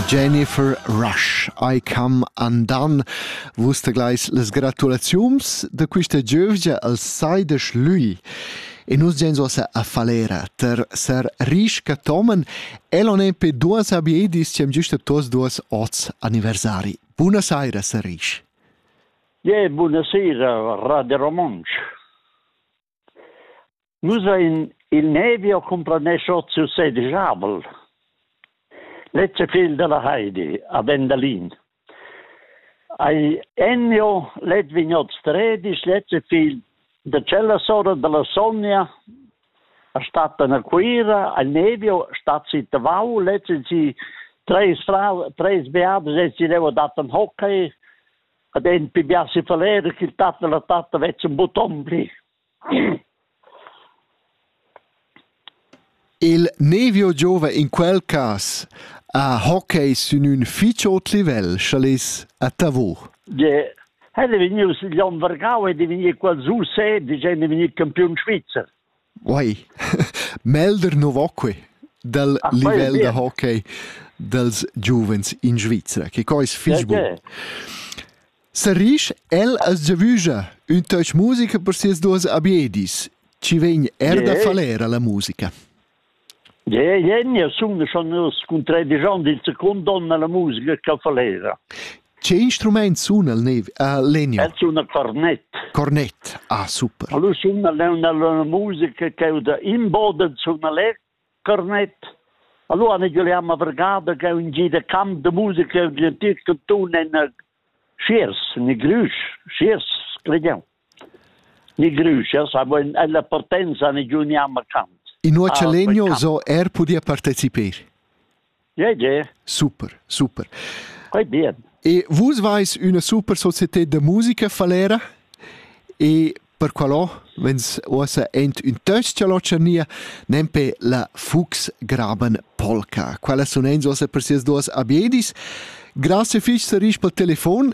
Jennifer Rush, I Come Undone. Vus tegleis las gratulaziums da quista giövgia al Saidesch Lui. E nus gens ossa a Falera ter ser risca tomen elon e pe duas abiedis cem giusta tos duas oz anniversari. Buna saira, ser risch. Yeah, buonasera, Radio Romansch. Nus ein il Nevio cumplanescha siu sedisch avel. Lezza figl dalla Heidi, a Vendalin. Ei ennio let vignots tredis, lezza figl da cella sora dalla Sonja, a stattan a Cuira, al Nevio stat si Tavau, lezza si treis frau, treis beatas e si leva dattan hockey, ad en pigliar si faler ch'il tat e la tatta vezzan buton pli. Il Nevio giova in quel cas a hockey sün ün fich ot livel, chalis a Tavur. Je, hätte vegnius gli on Vergau hätte vegni qual su se, die gende vegni campiun Schweizer. Uei, melder nu vo quai dal Ah, quai è livel da bien. hockey dals giuvens in Svizra, che co es fich bun. Perché? Sarrisch, el as giavüscha ün toc musica per sias duos abiedis. Ci vegn er da Che? faler a la musica. Jeu Jenja sun schon scuntrà digiond il secund donn alla musica cafalera. Che instrument sun el nev? Uh, legno. El sun a cornet. Cornet. Ah, super. Allora sun una, una musica che è da imboden sun alle cornet. Allora ne giochiamo vergada che è un giro camp de musica e di antic tun en Schiers, ne Glüsch, Schiers, crediamo. Ni grüschas havein ella partenza negiun jamma cant. Innuocha legno so er pudia partecipar. Ja, ja. Super, super. Quei bien. E vus vais üna super società da musica falera e per qualo vens ossa ent un töst cha locernia nempe la Fuchs graben polka. Quella sun ens ossa per sias duas abiedis. Grazie fich, Sarisch, pel telefon